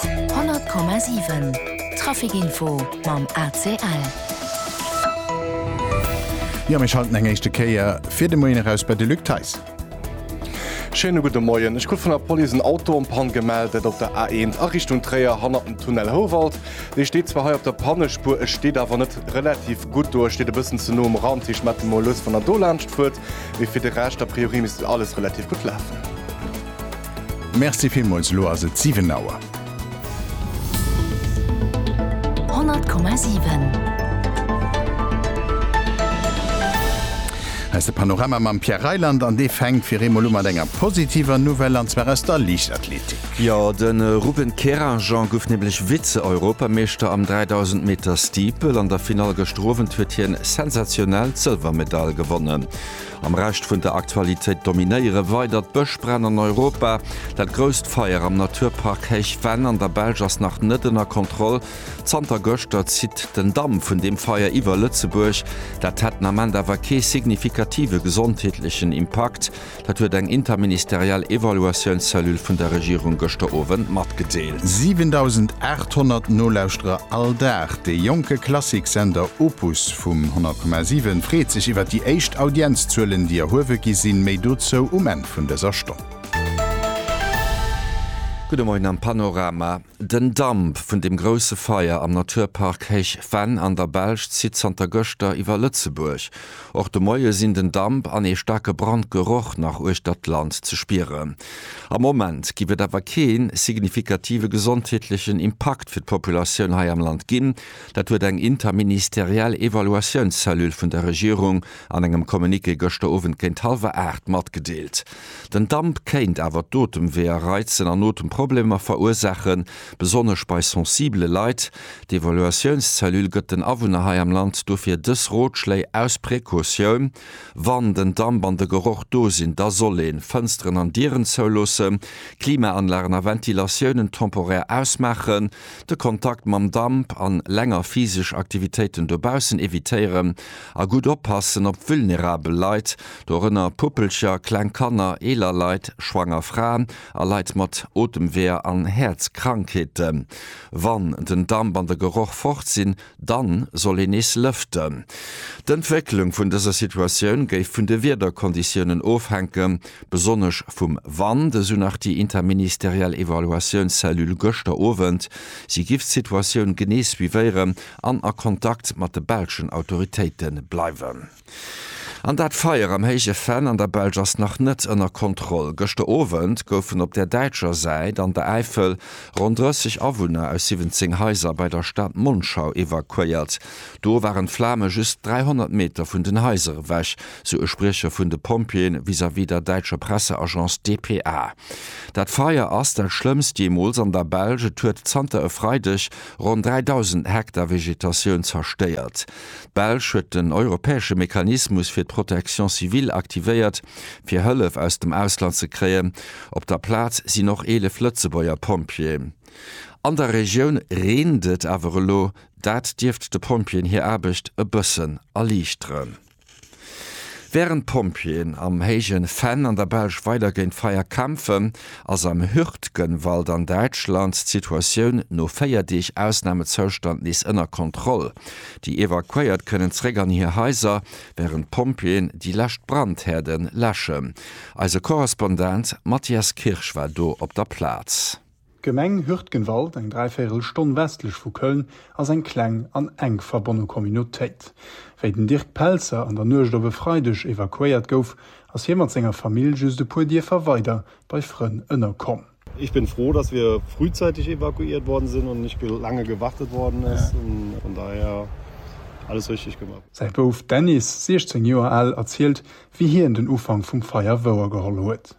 100,7 Traficinfo mam ACL. Jo, mir schalten eng éischte Kéier fir de Moien eraus bei de Luc Theis. Schéine gudde Moien. Ech krut vun der Police en Auto en Panne gemellt, dat op der A1 a Richtung Tréier hannert dem Tunnel Houwald. Dee steet zwar hei op der Pannespuer, e steet awer net relativ gutt do, e steet e bëssen ze no um Rand. Hie schmette emol lues, wann Der dolaanscht fuert. Mee fir de Rescht, a priori misst alles relativ gutt lafen. Merci villmools, elo ass et 7 Auer. 100,7. Hei ass de Panorama mam Pierre Reyland an dee fänkt fir eemol u mat enger positiver Nouvelle an zwar aus der Liichtathletik. Jo, de Ruben Kerajan gouf nämlech Vize-Europameeschter am 3000 Meter Steeple. An der Finall gëschter Owend huet hien sensationell d'Sëlwermedail gewonnen. Am Rescht vun der Aktualitéit dominéiere weider d'Bëschbränn an Europa. Dat grousst Feier am Naturpark Héich Venn an der Belsch ass nach net ënner Kontroll. Zanter gëschter zitt den Damp vun deem Feier iwwer Lëtzebuerg. Dat hätt den Ament awer kee signifikative gesondheetlechen Impakt. Dat huet eng interministeriell Evaluatiounscellule vun der Regierung gëschter Owend matgedeelt. 7.800 Nolauschterer all Dag, dee jonke Klassiksender Opus vum 100,7 freet sech iwwer déi éischt Audienzzuelen, déi erhuewe gi sinn. Méi dozou um Enn vun dëser Stonn. Gudde Moien am Panorama. Den Damp vun dem grousse Feier am Naturpark Héich Venn an der Belsch zitt zanter gëschter iwwer Lëtzebuerg. Och de Moie sinn den Damp an ee staarke Brandgeroch nach uechter d'Land ze spieren. Am Moment géif et awer kee signifikative gesondheetlechen Impakt fir d'Populatioun hei am Land ginn. Dat huet eng interministeriell Evaluatiounscellule vun der Regierung an engem Communiqué gëschter Owend géint hallwer aacht matgedeelt. Den Damp kéint awer d'Otemweeër reizen an Otemproblemer verursaachen, besonnesch bei sensibele Leit. D'Evaluatiounscellule gëtt den Awunner hei am Land dofir dës Rotschléi aus Precautioun, Wann den Damp an de Geroch do sinn, da soll een d'Fënsteren an Dieren zouloossen, Klimaanlagen a Ventilatiounen temporär ausmaachen, de Kontakt mam Damp an länger physesch Aktivitéiten dobaussen evitéieren a gutt oppassen op vulnerabel Leit, dorënner Puppelcher, kleng Kanner, eeler Leit, schwanger Fraen a Leit mat Otemweeër an Häerzkrankheeten. Wann den Damp an de Geroch fort sinn, Dann soll een nees lëften. D'Entwécklung vun dëser Situatioun géif vun de Wiederkonditiounen ofhänken, besonnesch vum Wand, esou nach déi interministeriell Evaluatiounscellule gëschter Owend. Si giff d'Situatioun genee suivéieren an a Kontakt mat de belschen Autoritéite bleiwen. An dat Feier am Héije Venn an der Belsch ass nach net ënner Kontroll. Gëschter Owend goufen op der däitscher Säit an der Äifel ronn 30 Awunner aus 17 Haiser bei der Stad Monschau evakuéiert. Do waren d'Flame just 300 Meter vun den Haiser ewech, sou e Spriecher vun de Pompjeeën vis-à-vis der däitscher Presseagence dpa. Dat Feier ass dat schlëmmst jeemools an der Belsch. Et huet zanter e Freideg ronn 3.000 Hektar Vegetatioun zerstéiert. D'Belsch huet den europäesche Mechanismus fir d'Protection civile aktivéiert, fir Hëllef aus dem Ausland ze kréien. Op der Plaz sinn och 11 Lëtzebuerger Pompjeeë. An der Regioun reent et awer elo, dat dierft de Pompjeeën hir Aarbecht e bëssen erliichteren. Wärend d'Pompjeeën am héijen Fenn an der Belsch weider géint d'Feier kämpfen, ass am Hürtgenwald an Däitschland d'Situatioun no 4 Deeg Ausnamezoustand nees ënner Kontroll. Déi Evakuéiert kënnen zeréck an hir Haiser, wärend d'Pompjeeën déi lescht Brandhäerden läschen. Eise Korrespondent Matthias Kirsch war do op der Plaz. D'Gemeng Hürtgenwald, eng dräivéirel Stonn westlech vu Köln, ass eng kleng an enk verbonne Communautéit. Wéi den Dirk Pelzer an der Nuecht op e Freideg evakuéiert gouf, ass hie mat senger Famill just e puer Dierfer weider bei Frënn ënnerkomm. Ech bin froh dass wir frühzeitig evakuiert worden sinn und nicht lange gewartet worden ist. Von daher alles richtig gemacht. Säi Bouf Dennis, 16 Joer al, erzielt, wéi hien den Ufank vum Feier wouergeholl huet.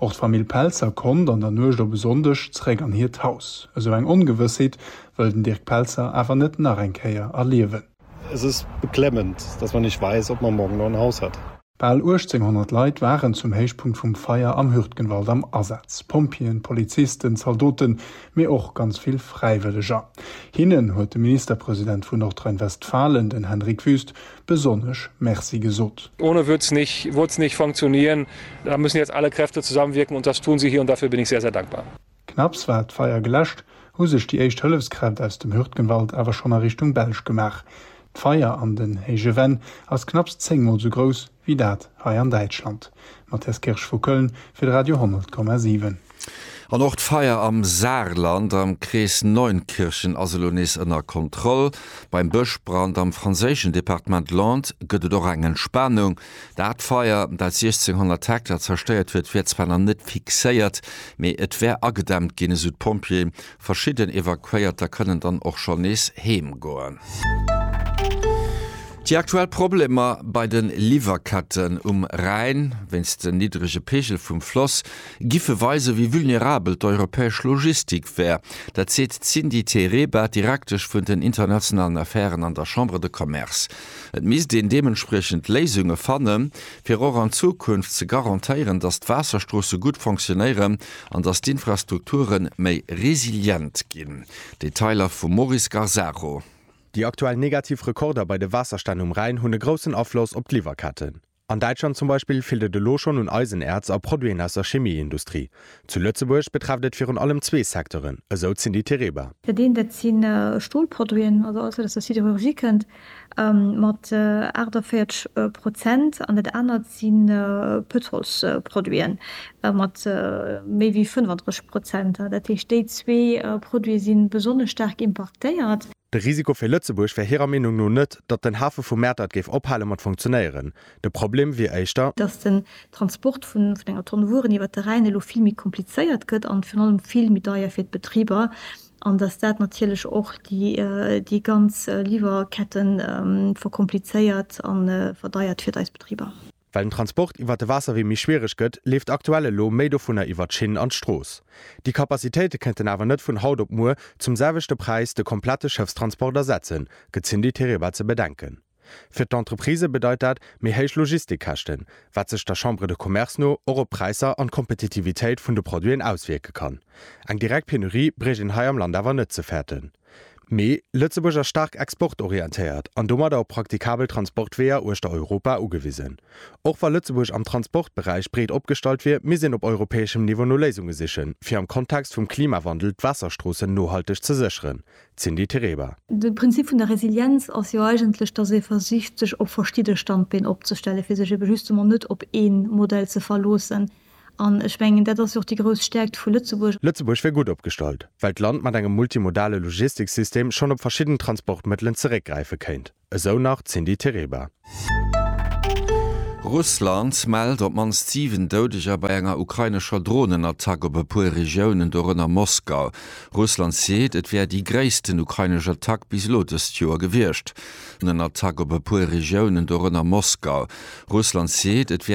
Och d'Famill Pelzer konnt an der Nuecht op e Sonndeg zeréck an hiert Haus. Esou eng Ongewëssheet wëll den Dirk Pelzer awer net nach eng Kéier erliewen. Es ist beklemmend, dass man nicht weiß, ob man morgen noch ein Haus hat. Bal 1.800 Leit waren zum Héichpunkt vum Feier am Hürtgenwald am Asaz, Pompjeeën, Polizisten, Zaldoten, mee och ganz vill Fräiwëlleger. Hinnen huet de Ministerpresident vun Nordrhein-Westfalen, den Henrik Wüst, besonnesch Merci gesot. Ohne wird es nicht, wird es nicht funktionieren. Da müssen jetzt alle Kräfte zusammenwirken und das tun sie hier und dafür bin ich sehr, sehr dankbar. Knapps war d'Feier geläscht, hu sech déi éischt Hëllefskräft aus dem Hürtgenwald awer schonn a Richtung Belsch gemaach. D'Feier an den héije Wänn ass knapps 10 mol sou grouss wéi dat hei an Däitschland. Matthias Kirsch vu Köln fir de Radio 10,7. An och d'Feier am Saarland am Krees Neunkirchen ass elo nees ënner Kontroll. Beim Bëschbrand am franséischen Departement Landes gëtt et och eng Entspanung. Dat Feier, dat 1.600 Hektar zerstéiert huet, wär zwar nach net fixéiert, mee et wär agedämmt ginn, esou d'Pompjeeë. Verschidden Evakuéierter kënnen dann och schonn nees heem goen. Déi aktuell Problemer bei de Liwwerketten um Rhäin, wéinst den niddrege Peegel vum Floss, Giffe weisen, wéi vulnerabel d'europäesch Logistik wär. Dat seet d'Cindy Tereba, Direktesch vun den internationalen Affären an der Chambre de Commerce. Et misst een deementspriechend Léisunge fanne fir och an Zukunft ze garantéieren, datt d'Waasserstroosse gutt fonctionéieren an datt d'Infrastrukture méi resilient ginn. Detailer vum Maurice Garzaro. Déi aktuell negativ Rekorder bei de Waasserstänn um Rhäin hunn e groussen Afloss op d'Liwwerketten. An Däitschland zum Beispill feelt et elo schonn un Eisenäerz a Produiten aus der Chemieindustrie. Zu Lëtzebuerg betrefft et virun allem zwee Secteuren, esou d'Cindy Tereba. Dat eent, dat si Stolproduiten, also alles wat aus der Siderurgie kënnt, mat 48 Prozent, an dat anert si Pëtrolsproduiten, mat méi wéi 35 Prozent. Dat heescht, déi zwee Produite si besonnesch staark importéiert. De Risiko fir Lëtzebuerg wär hirer Meenung no net, datt den Hafe vu Mäertert géif ophale mat funktionéieren. De Problem wier éischter. Datt den Transport vun enger Tonn Wueren iwwer de Rhäin elo vill méi komplizéiert gëtt an virun allem vill méi deier fir d'Betriber an datt dat natierlech och déi ganz Liwwerketten verkomplizéiert a verdeiert fir eis Betriber. Well den Transport iwwert de Waasserwee méi schwiereg gëtt, leeft aktuell elo méi dovunner iwwert d'Schinn an d'Strooss. Déi Kapazitéite kënnten awer net vun haut op muer zum selwechte Präis de komplette Schëffstransport ersetzen, gëtt d'Cindy Tereba ze bedenken. Fir d'Entreprisë bedeit dat méi héich Logistikkäschten, wat sech der Chambre de Commerce no och op d'Präisser an d'Kompetitivitéit vun de Produiten auswierke kann. Eng direkt Penurie bréicht een hei am Land awer net ze fäerten. Mee Lëtzebuerg ass staark exportorientéiert an domadder op praktikabel Transportweeër uechter Europa ugewisen. Och wa Lëtzebuerg am Transportberäich breet opgestallt wier, misst een op europäeschem Niveau no Léisunge sichen, fir am Kontext vum Klimawandel d'Waasserstroossen nohalteg ze sécheren. Cindy Tereba. De Prinzip vun der Resilienz ass jo eigentlech, dass ee versicht, sech op verschidde Standbeen opzestellen, fir sech ebe justement net op ee Modell ze verloossen, An ech mengen, dat ass jo och déi grouss Stärkt vu Lëtzebuerg. Lëtzebuerg wier gutt opgestallt, well d'Land mat engem multimodale Logistiksystem schonn op verschidden Transportmëttelen zeréckgräife kéint, esou nach d'Cindy Tereba. Russland mellt op d'mannst 7 Doudeger bei enger ukrainescher Dronenattack op e puer Regiounen, dorënner Moskau. Russland seet, et wär déi gréissten ukrainesch Attack bis elo dëst Joer gewiescht.